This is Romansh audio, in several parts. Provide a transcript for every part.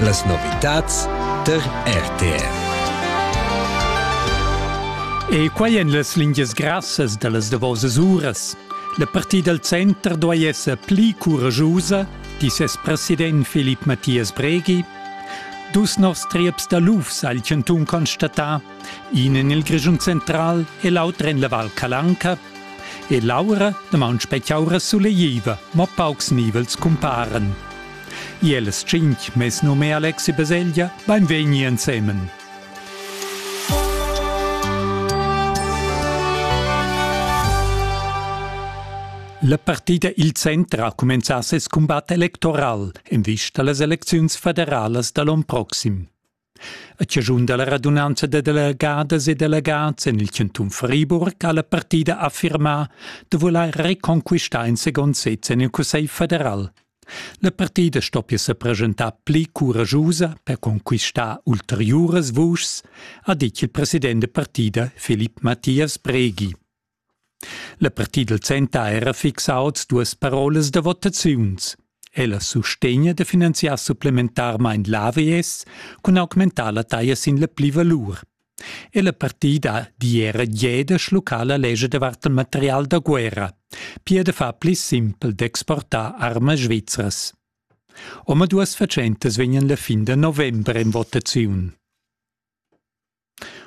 Las novitads tar RTR. E quai en las lingias grassas da las davosas uras. La partida dal center duai esser pli couragiusa, di ses president Filip Mathias Breghi. Dus novs trieps da lufs ha il chantun constatà, in en il Grischun central e l'auter en la Val Calanca. E Laura damaun specchiaura sulegliva, ma paucs nivels cumparen. Iels tschinch, mes num è Alexi Baselgia, beinvegni ensemen. La partida il centro ha cumenzà ses cumbat electoral en vista a las elecziuns federalas da l'on proxim. A chaschun dalla radunanza da delegadas e delegads en il cantun Friburg ha la partida affirmà da vulair reconquistar in second sez en il Cussegl federal. La partida stoppia sa presentar pli curagiusa per conquistar ulteriuras vuschs, ha ditg il president da partida Filip Mathias Breghi. La partida dal center ha era fixà oz duas parolas da votaziuns. Ella sustegna da finanziar supplementarmain l'AVS cun augmentar la taglia sin la plivalur. E la partida di era jeda schluccar la legge davart il material da guerra, pia da far pli simpel d'exportar armas svizras. Omaduas fatschentas vegnan la fin da november en votaziun.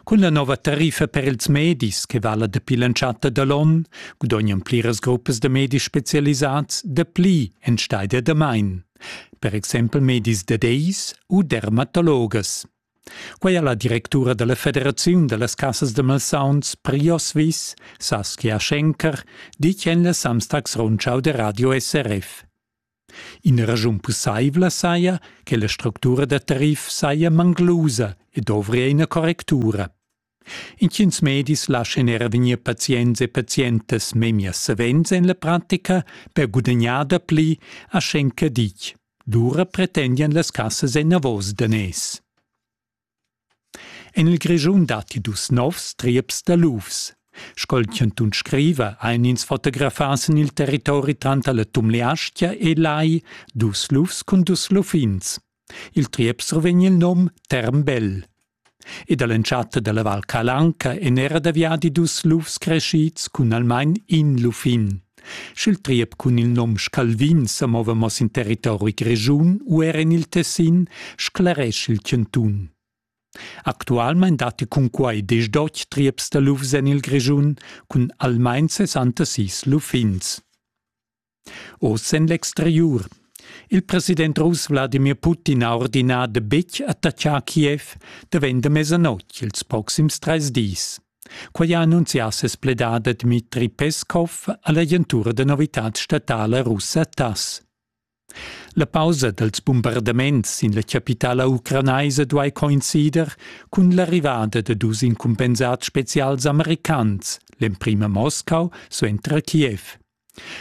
Cun la nova tariffa per ils medis che vala dapi l'entschatta da l'onn gudognan pliras gruppas da medis spezialisads dapli enstagl da damain, per exempel medis da deis u dermatologas. Quai ha la directura da la Federaziun da las cassas da malsauns Priosvis, Saskia Schenker, ditg en la Samstagsrundschau da Radio SRF. Ina raschun pussaivla saja che la structura da tarif saja manglusa e dovria ina correctura. Intgins medis laschan era vegnir pazients e pazientas memia savens en la pratica per gudagnar dapli a schenca ditg. Lura pretendian las cassas enavos daners. En il Grischun datti dus novs trieps da lufs. Sco il chantun scriva, ein ins fotografas en il territori tranter la Tumleastgia e Lai dus lufs cun dus luffins. Il triep survegn il num Termbell. Ed all'entschatta dalla Val Calanca èn era da viadi dus lufs crescids cun almain in luffin. Sch'il triep cun il nom Scalvin sa mova mo sin territori grischun u er en il Tessin, scleresch il chantun. Actualmein datti cunquai diesch trieps da lufs en il Grischun cun almain 60 sis luffins. Oz en l'exteriur. Il president russ Wladimir Putin ha ordinà da betg attaccar Kiev davent da mesanotg ils proxims trais dis. Quei ha annunzià ses pledader Dmitri Peskov all'agentura da novitads statala russa TASS. La pausa dals bombardaments sin la chapitala ucranaisa duai coincider cun l'arrivada da dus incumpensads spezials americans, l'emprima Moscau suenter Kiev.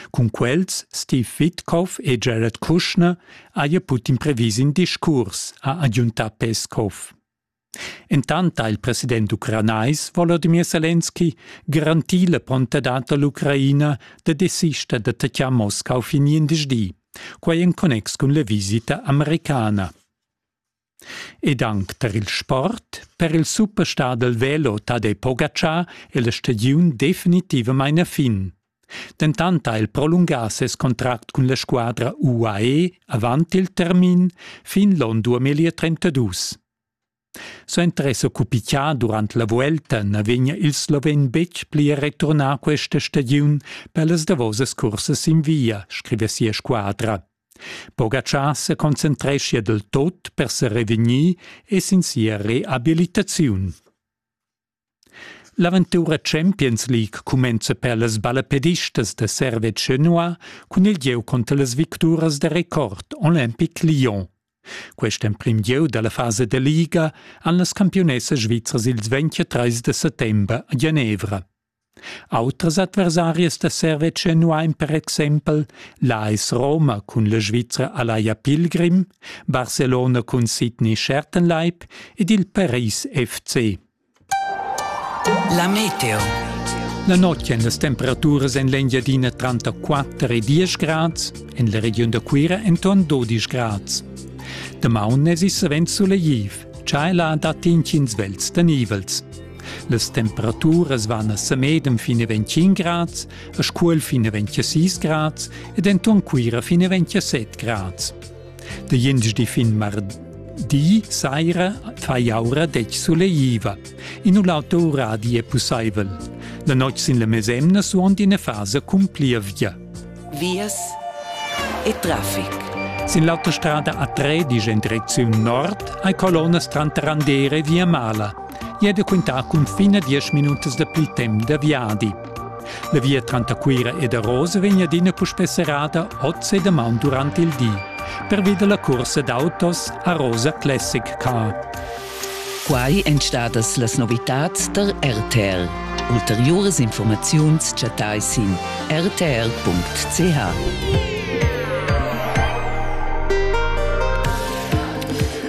Cun quels Steve Witkoff e Jared Kushner haja Putin previs in discurs, ha agiuntà Peskov. Entant ha il president ucranais Volodymyr Selenski garantì la prontadad da l'Ucraina da desister d'attaccar Moscau fin gliendisdi, quai en connex cun la visita americana. Ed anc tar il sport, per il superstar dal velo Tadej Pogacar è la stagiun definitivamain a fin. Dentant ha el prolungà ses contract cun la squadra UAE avant il termin fin l'onn 2032. Suenter esser cupitgà durant la vuelta na vegnia il sloven betg pli a returnar questa stagiun per las davosas cursas sin via, scrive sia squadra. Pogacar se concentreschia del tot per se revegnir e sin sia reabilitaziun. L'aventura Champions League cumenza per las ballapedistas da Servetsch Genua cun il gieu conter las victuras da record Olympic Lyon. Quest emprim gieu dalla fasa da Liga han las campiunessas svizras ils 23 de settember a Genevra. Autras adversarias da servetsch nu hain per exaimpel l'AS Roma cun la Svizra Alaia Pilgrim, Barcelona cun Sydney Schertenleib ed il Paris FC. La meteo. La notg èn las temperaturas en l'Engiadina tranter 4 e 10 grads, en la regiun da Cuira enton 12 grads. Damaun èsi savens sulegtiv, tschai là dat intgins vels da nivels. Las temperaturas van a Semedem fin a 25 grads, a Scuol fin a 26 grads ed enton Cuira fin a 27 grads. De jengi fin mardi saira fai aura dec soleiva. In un auto radi è pussaivel. La notg sin la mesemna suond ina fasa cumplia via. vias e traffic. Sin l'autostrada A3 dice in direcziun nord hai colonnas tranter Andere e Via Mala. E è quintà cun fine 10 minutas da pli temp da viadi. La via tranter Cuira ed Arosa vegn adina puspè serrada oz e damaun durant il di, pervi da la cursa d'autos Arosa Classic Car. Quai èn stadas las novitads tar RTL. Ulteriuras informaziuns chattai sin rtl.ch.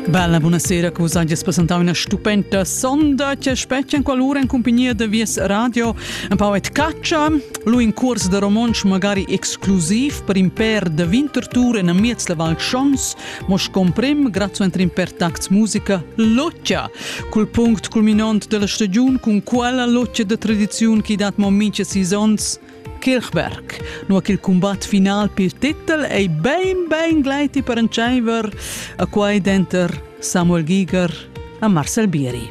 Bella, buonasera, cosa gli presentava una stupenda sonda che specchia in qualora in compagnia de Vies Radio. Un po' et caccia, lui in curs de romansch magari exclusiv per in per de Winterthur in miez la Val Schons, Mo scomprim, grazuenter in per tacts musica, loccia, cul punct culminont della stagiun cun quella loccia de tradiziun che dat mo mincha sis ons, Kirchberg, nur che il combat final pel titel ei ben ben gleiti per entscheiver a quai denter Samuel Giger e Marcel Bieri.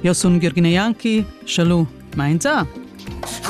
Io sun Girgina Janki, schalu, mainza!